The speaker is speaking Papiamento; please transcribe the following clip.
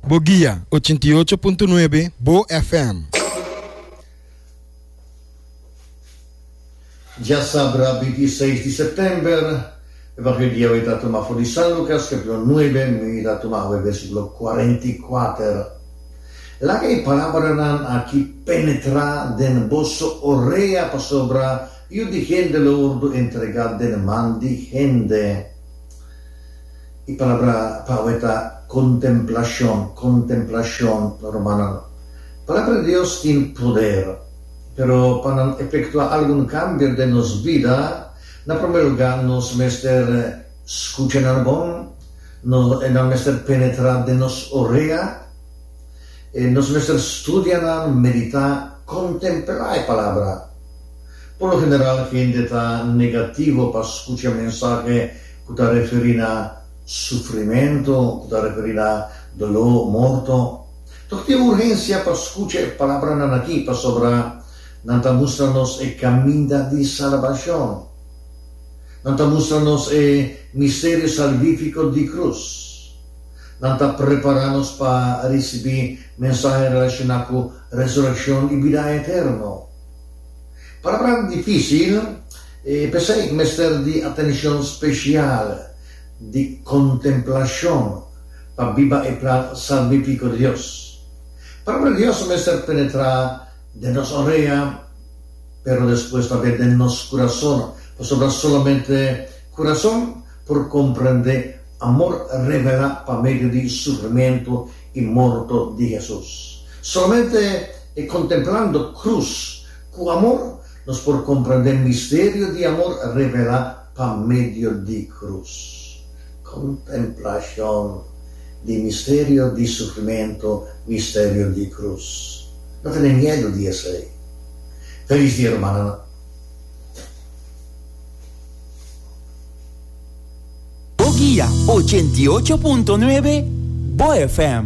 Bo guia, ochenta i ocho punto nuebe Bo FM. Dja sabra binti i seis di September, e bak'e dia awé ta tuma for di San Lucas, capitulo nuebe, mi ta tuma awé versiculo cuarenta i kuater. Laga e palabranan aki penetrá den boso orea, pasobra Yu di hende lo wordu entregá den man di hende. E palabra pa awe ta kontemplashon, kontemplashon, rumannan. Palabra di Dios tin poder, pero pa nan efektuá algun kambio den nos bida, na promé lugá nos mester skucha nan bon, nan mester penetrá den nos orea, nos mester studia nan, meditá, kontemplá e palabra. Por lo general hende ta negativo pa skucha mensahe ku ta referí na sufrimentu, ku ta referí na doló, morto. Tok tin urgensia pa skucha e palabranan akí, pasobra nan ta mustra nos e kaminda di salbashon. Nan ta mustra nos e misterio salvífiko di krus. Nan ta prepará nos pa risibí mensahe relashoná ku resurekshon i bida eterno. Palabran difícil, e p'esei cu mester di atencion special di contemplacion pa biba e plan salvifico di Dios. Palabra di Dios a mester penetra den nos orea, pero despues tambe den nos curason, pasobra solamente curason por comprende amor revela pa medio di sufrimento i morto di Hesus. Solamente e kontemplando krus ku amor nos por komprendé misterio di amor revelá pa medio di krus. Kontemplashon di misterio di sufrimentu, misterio di krus. No tene miedu di esei. Felis dia rumannan. Bo guia ochenta i ocho punto nuebe, bo FM.